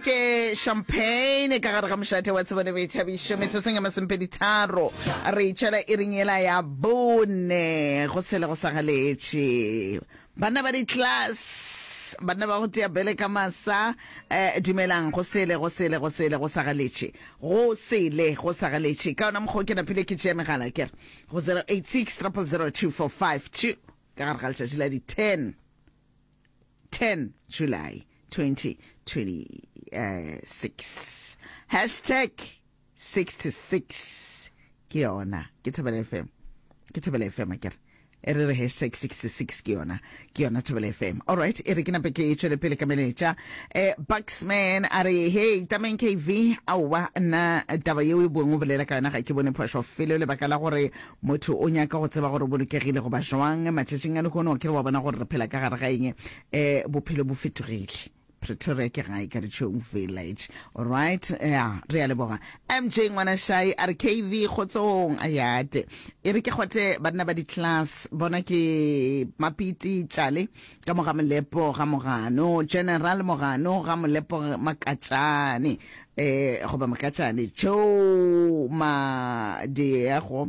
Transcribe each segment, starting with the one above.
ke champagne ka gare ga mošate wa tsebo le boithabišo metsotsong ya masempeditharo re itšela e reng ela ya bone go sele go sa galetše banna ba di-class banna ba go tea bele ka masa um dumelang go sele go sele go sele go sa galetše go sele go sa galetše ka yona mokgwa o ke napile ke tšea megala kere go 086 000 245 ka gare ga letšatši la di-10 10 July 2026 hashtag 66 ke yona ke thobela fm ke thobela fm a kere e re re hashtag 66 ke yona ke yona thobela fm all right e re ke nape ke e tšwele pele ka meletša eh, buxman a re hey tameng kv aowa nna taba yeo e boeng o bolela ka yona ga ke bone phošo felo lebaka la gore Motho o nyaka go tseba gore o bolokegile goba joang matšatšing a lehono. A ke re wa bona gore re phela ka gare ga eng? E, bophelo bo fetogile. Pretoria ke gae ka Dichong Village. Alright, ya, re a leboga. MJ Ngwanashai a re KV kgotsong a yate. E re ke kgotle banna ba di-class bona ke Mapiti Tšale Ka mo ga Molepo ga Mogano, General Mogano ga Molepo Makatšane, e, goba Makatšane, tšeo ma diego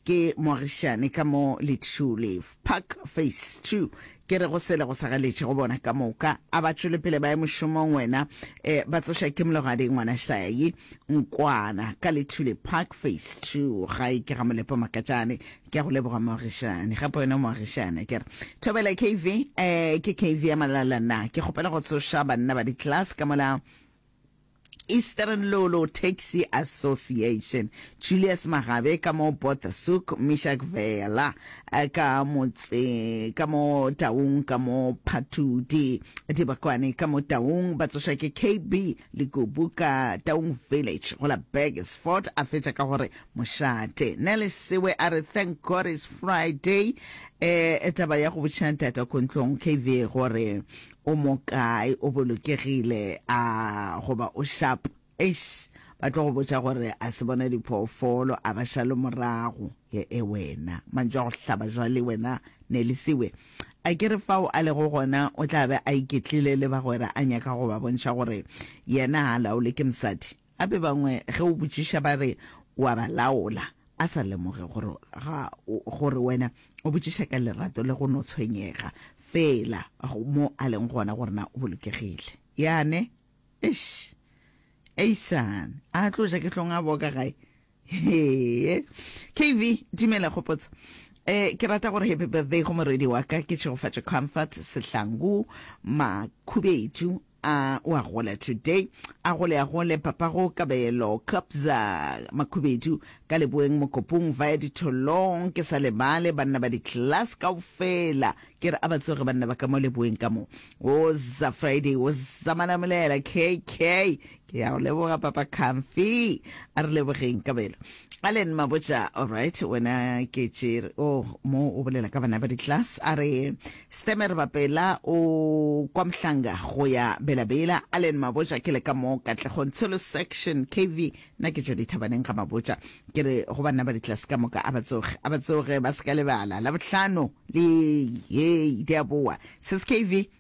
ke moagišane ka mo Litšule, Park Phase 2, ke re go sele go sa galetše go bona ka moka, a ba tšwele pele ba ye mošomong wena, e, ba tsoša ke Mlogadi Ngwanašayi, Nkwana, ka Litšule, Park Phase 2, gae ke ga Molepo Makatšane, ke a go leboga moagišane gape wena moagišane ke re thobela kv um eh, ke kv ya malala na ke kgopela go tsoša banna ba di-class ka mola Eastern Lolo Taxi Association Julius Magabe ka mo Bothasuk Mishak Vela eh, ka motse ka mo Taung ka mo Phatudi Dibakwane ka mo Taung ba tsoša ke KB Lekubu ka Taung Village go la Burgersfort a fetša ka gore mošate. Nelly Sewe a re thank God it's Friday. Eh, taba ya go botša ntata Kontlong KV gore o mo kae, o bolokegile a goba o sharp. Eish, ba tlo go botša gore a se bona diphoofolo a ba šale morago. He e wena, mantšu a go hlaba jwale wena Nelly Sewe. A ke re fao a lego gona o tla be a iketlile le bagwera a nyaka go ba bontšha gore yena ga a laolwe ke mosadi? Gape bangwe ge o botšiša ba re o a ba laola, a sa lemoge gore ga gore wena o botšiša ka lerato le go no tshwenyega feela mo a leng gona gore na o bolokegile. Yane? Eish! Eisan! A tlo ja ke hlong a boka gae? Hee. KV, dumela gopotsa. Eh, ke rata gore happy birthday go moredi wa ka ke tšhegofatšo comfort sehlangu makhubedu a o a gola today a gole a gole papago kabelo kapza makhubedu ka leboeng mokopong vaya ditholong ke sa lebale banna ba di-class kao fela ke re a ba tsoge banna ba ka mo leboeng ka mo o za friday o zamana molela kk ke a o leboga papa comfy a re lebogeng kabelo allen mabotša allright wena ke tšere o oh, mo o bolela ka bana ba di-class a re stemer bapela o kwa mohlanga go ya belabela allen mabotša ke le ka mo katlegong tshelo section kv nna ke tšwa dithabaneng ga mabotša ke re go banna ba di-class ka moka a ba tsoge a ba tsoge ba se ka lebala la bohlano le hei di a boa sis kv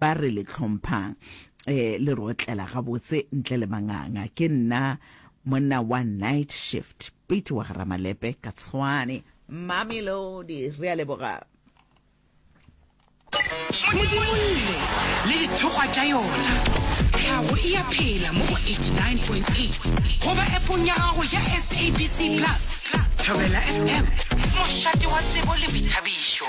ba re le hlomphang eh, le re otlela gabotse ntle le manganga ke nna monna wa night shift pete wa garamalepe ka tshwane mamelodi re a leboga modimolle le dithokgwa tša yona tlhago e ya phela mo go 89.8 goba epong ya gago ya sabc plus thobela fm mošate wa tsebo le boithabišo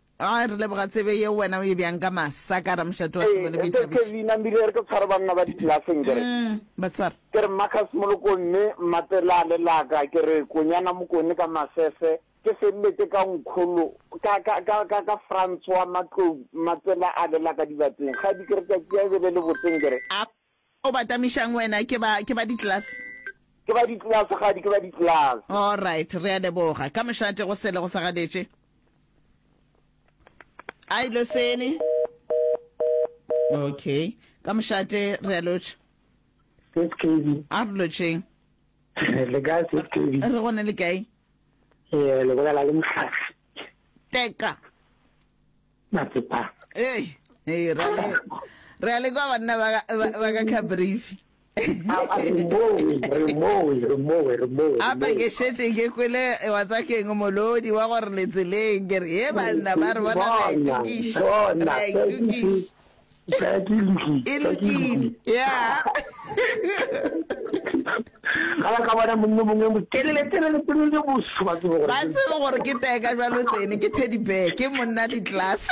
A re leboga tsebe yeo wena o e bjang ka masa ka ramošate wa tsebo le boithabišo. Ee, Kevin a mbile re tlo tshwara banna ba diplaseng ke re. Umm, ba tshwara. Ke re Marcus Moloko mme mmape la le la ka ke re Konyana Mokone ka masese ke feleletse ka Nkholo ka, ka, ka, ka, ka Francois Matlou mmape la a le la ka dibatseng kgadi ke re tšatši ya e be le le botseng ke re. A O ba tamišang wena? Ke ba, ke ba ditlelase. Ke ba ditlelase, kgadi, ke ba ditlelase. All right, re a leboga. Ka mošate go sele go sa gadetše. A e losene. Okay. Ka mošate re a lotšha. Sis Kevy. A re lotšheng. Le kae Sis Kevy? Re gone le kae? Ee, le bolela le mohlafi. Teka. Hey, hey, re a le re a le kwa banna ba ka- ba- ba ka Cabrifi. Apa ke šetše ke kwele eh, wa tsa keng molodi wa gore letseleng ke re he banna ba re bona re a itukiša, re a itukiša. Ka ke lukile. E lukile. Yeah. Gala ka bona mongwe mongwe mo telele telele telele bo se ba tsebo gore. Ba tsebo gore ke tee ka jalo tsene ke teddy bear ke monna di class.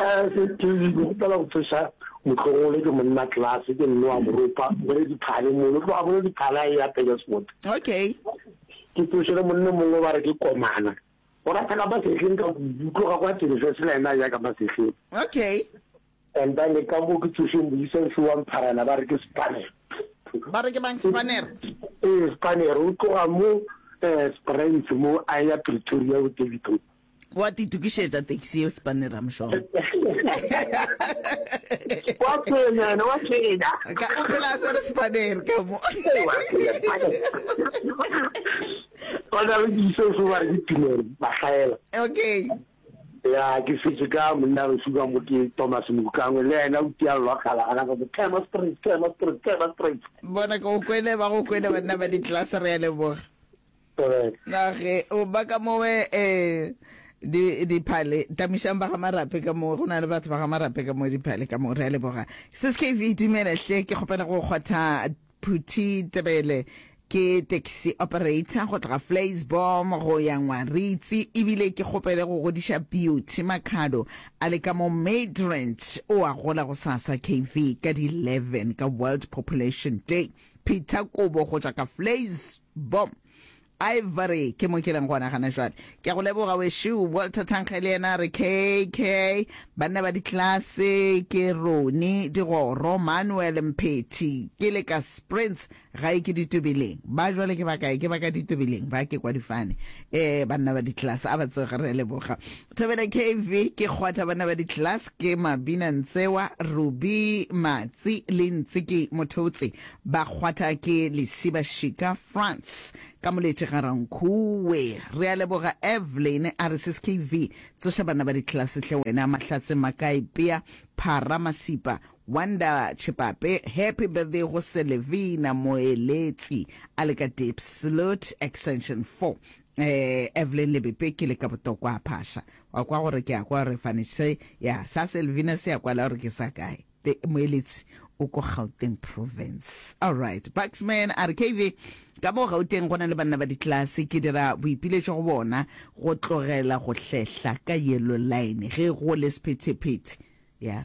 Eh ke ke ke gopela go tsesa motlogole ke monna class ke nne wa moropa bere di phale mo lo tloga bere di phale ya pele sport. Okay. Ke tsosele monna mongwe ba re ke komana. Go rata ka masehleng ka kudu, tloga kwa tiriso sela ena ya ka masehleng. Okay. And ba le ka mo ke tsošeng boisang se wa mpharana ba re ke spanner. Ba re ke bang spanner? Eh spanner o tloga mo eh Springs mo a ya Pretoria o Daveyton. Wa titukišetša taxi eo spanner I'm sure. Wa tsenya yena wa tsenya. Ka o phela se re spanner ka mo. Ba na le diso se ba di tumelo ba hlaela. Okay. Ya ke setse ka monna re suka mo ke Thomas Mokangwe le ena o tia lwa khala ana go tlema straight tlema straight tlema straight. Bona go kwele ba go kwele banna ba di class re ya le boga. Correct. Na ge o ba ka mowe eh di di phale tamishang ba ga marape ka mo go na le batho ba ga marape ka mo di phale ka mo re ya le boga. Sis KV dumela hle ke kgopela go kgotha Phuthi Tebele ke taxi operator go tloga Vleisbom go ya Ngwaritsi ebile ke kgopele go godiša Beauty Makhado a le ka mo Midrand o a gola gosasa KV ka di 11 ka World Population Day. Peter Kobo go tšwa ka Vleisbom Ivory, ke mo ke leng gona gana jwale. Ke a go leboga wešo. Walter Thankge le yena a re KK, banna ba ditlase ke Roni Digoro, Manuel Mphethi, ke le ka Springs, gae ke Ditobeleng. Ba jwale ke ba kae? Ke ba ka Ditobeleng ba, ke kwa difane. Eh, banna ba ditlase, a ba tsoge, re a leboga. Thobela KV, ke kgwatha banna ba ditlase, ke Mabina Ntsewa, Rubi Matsi le Ntsi ke Mothotse. Ba kgwatha ke lesiba šika France ka moletše ga Rankuwe. Re a leboga Evelyn a re sskv tsoša banna ba ditlelase hle wena Mahlatse Makae Pea Phara Masipa Wonder Chepape Happy birthday go Selevina Moeletsi a le ka Deep Slut extension four eh Evelyn Lebepe ke le ka botokwa phasha wa kwa gore ke a kwa re fanitše ya sa Selvina se ya kwala gore ke sa kae Te, Moeletsi o ko Gauteng Province. Alright. Baxman a re, KV, ka mo Gauteng go na le banna ba ditlelase. Ke dira boipiletšo go bona go tlogela go hlehla ka yellow line ge go le sephetephete. Ya.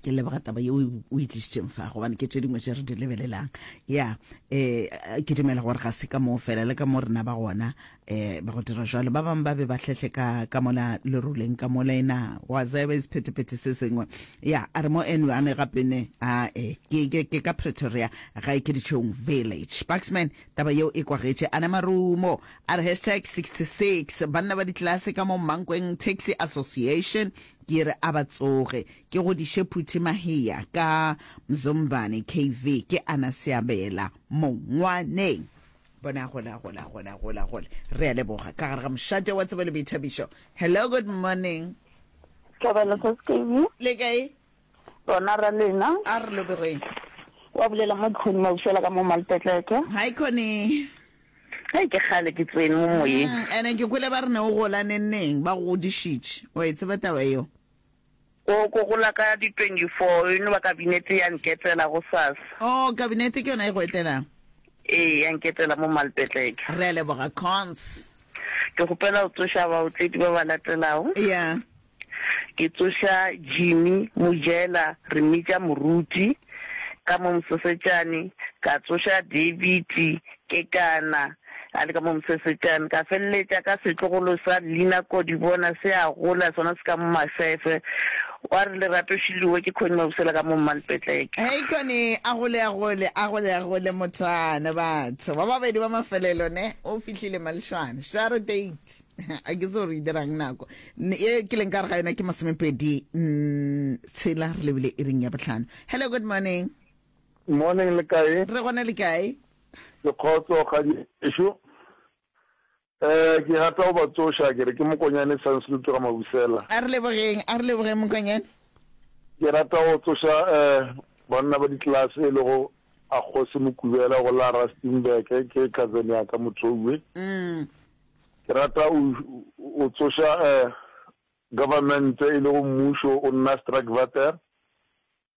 Ke leboga taba yeo o e tlišitšeng fa gobane ke tše dingwe tše re di lebelelang. Ya. Eh, ke dumela gore ga se ka moo fela le ka mo rena ba gona eh ba go dira jalo ba bangwe ba be ba hlehle ka ka mola leruleng ka mola ena wa tseba e sephetephete se sengwe ya a re mo enwe a ne gape ne a e ke ke ke ka pretoria ga e ke ditšhong village sparksman taba yeo e kwagetše a ne marumo a re hashtag 66 banna ba ditlelase ka mo mankweng taxi association ke re a ba tsoge ke go diše phuthi mahea ka mzombane kv ke ana seabela mongwaneng bona gola gola gola gola gola re a leboga ka gare ga mošate wa tsebo le boithabišo hello good morning tlabelo sa sekemi le kae bona ra lena a re lobegweng wa bolela mo dikgoni mausela ka mo malpetleke hi coni ge ke gale ke tsene mo moyeng mm, ene ke kwele ba re ne o gola nenneng ba go godišitše wa e tseba taba eo Go, go, go la ka di 24, you know, ba Kabinete ya nketela gosasa. Oh, Kabinete ke yona e go etelago? Ee, ya nketela mo Malpetlek. Re a leboga, Cons. Ke kgopela go tsoša baotledi ba ba latelago. Ya. Ke tsoša Jimmy Mojela, re mmitša Moruti, ka mo Mosesetšane, ka tsoša David, Ke ka na, a le ka mo Mosesetsana, ka feleletša ka setlogolo sa Lina Kodibona se a gola, sona se ka mo Mafefe. Wa re Lerato Šiloe ke kgoní Mabusela ka mo Mmalpetleke. Hei kwane, a gole, a gole, a gole, a gole mothwana. Batho ba babedi ba mafelelo, ne, o fihlile Malšwane. Share date. A ke tsebe gore e dirang nako. Ye ke leng ka re ga yona ke masomepedi tshela, re lebile iring ya bohlano. Hello, good morning. Morning, le kae? Re gona, le kae? Ke kgotso kgadi ešo. Eh, ke rata go ba tsoša, ke re ke Mokonyane Sansloot ga Mabusela. A re lebogeng, a re lebogeng Mokonyane. Ke rata go tsoša eh banna ba ditlelase e lego a Kgosi Mokubela go la Rustenburg, ke cousin ya ka Mothoue. Mm. Ke rata u o tsoša eh government e lego mmušo o nna Strakvater.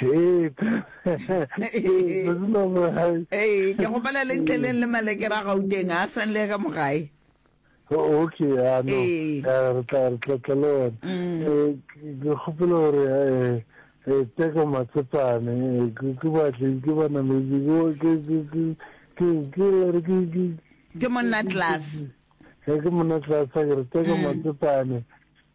Ee, ke go pala le ntleleng le malekere a gauteng a san le ka mogae okay ano eh. eh, re tla re tla tla le one mm. eh, ke gopela gore eh, eh teko matsepane eh, ke batle ke bana me ke ke ke ke ke re ke ke ke monna class eh ke monna class ke re teko mm. matsepane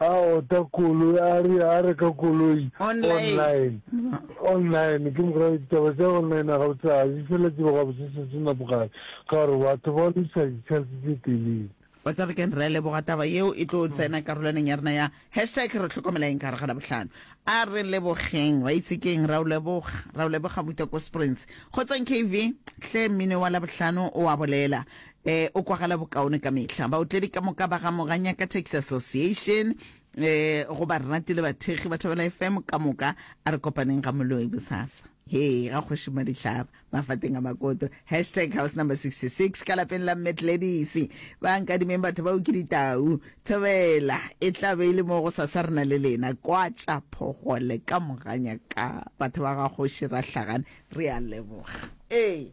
A ota koloi, a re a reka koloi online. Online, ke mokgwa ditaba tsa online ga o tsaya, di fela tsebo ga botse se tsena bogale, ka gore batho ba lisa ditshansi tse telele. Wa tsa re keng re leboga taba yeo e tlo tsena karolaneng ya rena ya hashtag re tlhokomela eng ka gare ga Labohlano. A re lebogeng, wa itse keng, ra o leboga, ra o leboga Muta ko Springs. Kgotsong KV, hle mmino wa Labohlano o a bolela. E, o kwagala bokaone ka mehla. Baotledi ka moka ba ga Moganyaka Taxi Association e, go barati le bathekgi ba Thobela FM ka moka, a re kopaneng ga Moloi bosasa. He, ga kgoši Madihlaba, mafateng a makoto. Hashtag house number 66 ka lapeng la Mme Gladys. Ba nkadimeng batho bao ke ditau. Thobela, e tla be e le mo go sasa re na le lena. Kwatša phogole ka Moganyaka. Batho ba ga kgoši Rahlagane, re a leboga. Ee.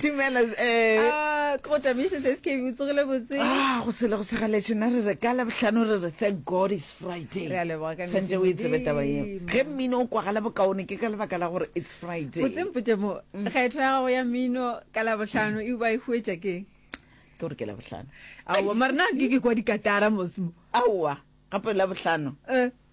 dumela um go tamiše se se kebe utsogile botse ah, go sele go segaletše na re re ka labohlano re re thank god is friday santse o e tsebe taba eo ge mmino o kwagala bokaone ke ka lebaka la gore it's friday botsempotse mo mm. kgetho ya gago ya mmino ka labohlano e ba e huetša ke ke gore ke labohlano aowa mare na ke ke kwa dikatara mosmo aowa gape labohlano eh.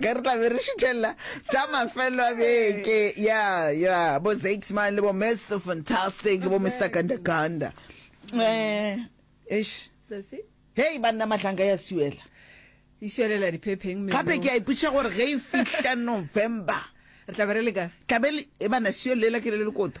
ge re tlabe re šuthelela tša mafelo a beke ya ya bo zakesman le bo mr fantastic bo mr gandaganda um eh, ish hei banna matlhanka ya suela išwelela diphepheng gape ke a ipotša gore ge e fihla november re tlabe re leka tlabe e bana sio lela ke le lekoto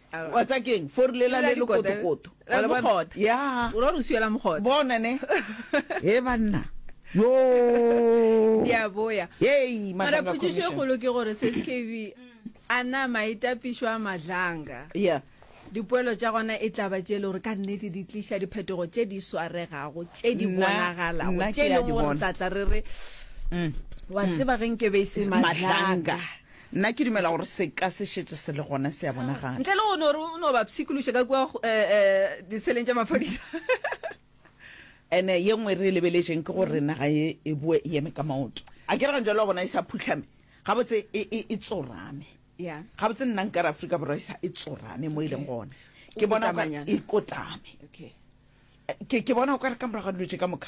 wa tsa keng fori lela Lela le le dikota. kotokoto Eh, Wa le bona? mogota. ya o ra gore o siela mogota bona ne he banna yo di a boya Yey, mara Matlanga potšišo e Commission. kgolo ke gore seskv a na maitapišo a matlanga ya dipoelo tša gona e tla ba tše e le gore ka nnete di tliša diphetogo tše di swaregago tše di Nna- bonagalago nna tše ke e ya leng di gore bona. tlatla re re Mm. wa tseba ge nke be e se matlanga matlanga Nna ke dumela gore seka se šetše se le gona, se a bonagala. Ntle le go no re o no ba pshikološa ka kua diseleng tša maphodisa. Ene ye nngwe re e lebeletšeng ke gore naga ye e boe e eme ka maoto. A ke re gantšale wa bona e sa phuhlame, gabotse e tsorame. Gabotse nna nkare Afrika Borwa e sa e tsorame mo e leng gona. Ke bona e kotame. Ke bona o ka re ka morago ga dilo tše ka moka.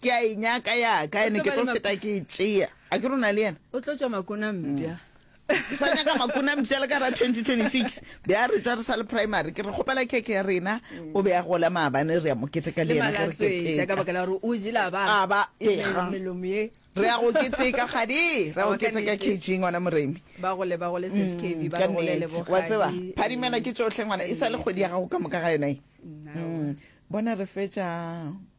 ke a e nyaka yaka ene ke tlo feta ke e tšea a ke rona le yena o tlo tšwa makona mpša mm. sa nyaka makona mpša le ka ra 2026 be a re tša re sa le primary ke re kgopela keke ya rena mm. o be a gola maabane re ya moketeka le yena kereketeka baka la gore o jela ba ba ega melomo ye re ya go keteka gadi re go keteka kg ngwana moremi ba gole ba gole seskb ba gole le bo wa tseba phadimela ke tsohle ngwana e sa le kgwedi ya gago ka moka ga yona e bona re fetša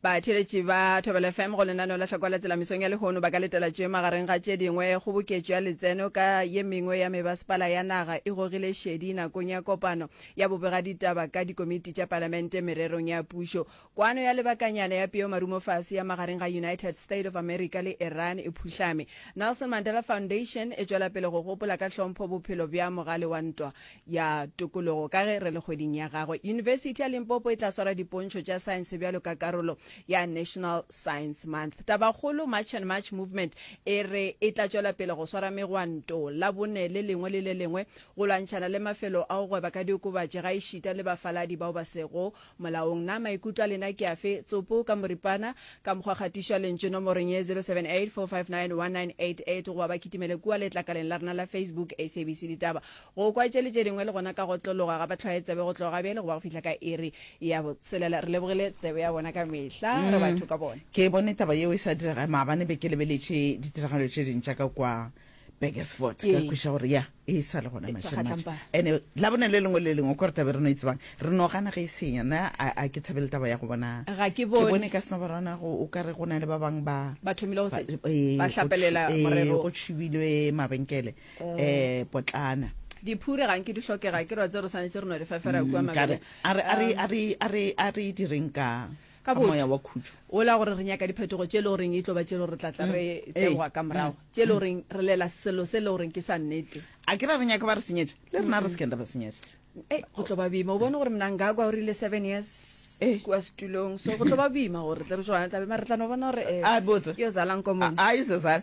Batheeletši ba Thobela FM go lenaneo la Hlakola Tsela mesong ya lehono ba ka letela tše magareng ga tše dingwe, kgoboketšo ya letseno ka ye mengwe ya mebasepala ya naga e gogile šedi nakong ya kopano ya bobegaditaba ka dikomiti tša Palamente mererong ya pušo, kwano ya lebakanyana ya peo marumofase ya magareng ga United State of America le Iran e phuhlame. Nelson Mandela Foundation e tšwela pele go gopola ka hlompho bophelo bja mogale wa ntwa. ya tokologo ka ge re le kgweding ya gagwe. Yunibesithi ya Limpopo e tla swara dipontšho tša saense bjalo ka karolo ya National Science Month. Tabakgolo March and March Movement e re e tla tšwela pele go swara megwanto la bone le lengwe le le lengwe go lwantšhana le mafelo a go gweba ka diokobatši gaešita le bafaladi bao ba sego Molaong, na maikutlo a lena ke afe? Tsopo ka moripana, ka mokgwa kgatišo ya lentšu nomorong ye 0784591988 goba ba kitimele kua letlakaleng la rena la Facebook SABC Ditaba go kwa tše le tše dingwe le gona ka go tlologa ga bahlwaetsebe go tloga gabjale go ba go fihla ka iri ya botshelela. Re lebogile tsebe ya bona ka mehla re batho ka bona. Ke bone taba yeo e sa direga maabane be ke lebeletše ditiragalo tše dintša ka kua. Burgersfort ka re kweša gore ya e sa le gona mašematše ande la bone le lengwe le lengwe ko re tabe re no e tsebang re no gana ge e senya na a ke thabele taba ya go bona ga ke bone ka seno barwana o ka re go na le ba bangwe ba ba thomile go se ba hlapelela morero go tshubilwe mabenkele um potlana diphure ga nke di hlokega ke rwa tse re swanetse re no di fefera kua mabele a re direng ka ka Ka moya botho wa khutšo. ola gore re nyaka diphetogo tše e le goreng e tlo ba tše e le gore re tla tla re Ee. tegoga ka morago tše e le goreng re lela selo se e le goreng ke sa nnete a ke ra re nyaka ba re senyetša le rena re sekeng ra ba senyetša e go tlo ba boima o bone gore mnangagwa o rile seven years Eh. kua setulong so go tlo ba boima gore tle re jwana tlabe mare re tla no bona gore eh, A botse. yo zalang komong a izo zala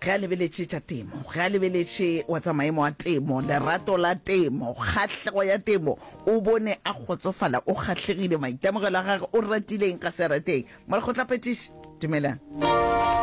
ge a lebeletše tša temo, ge a lebeletše wa tsa maemo a temo, lerato la temo, kgahlego ya temo, o bone a kgotsofala, o kgahlegile, maitemogelo a gage, o ratile eng, ga se a rateng, morago o tla petiša. Dumelang.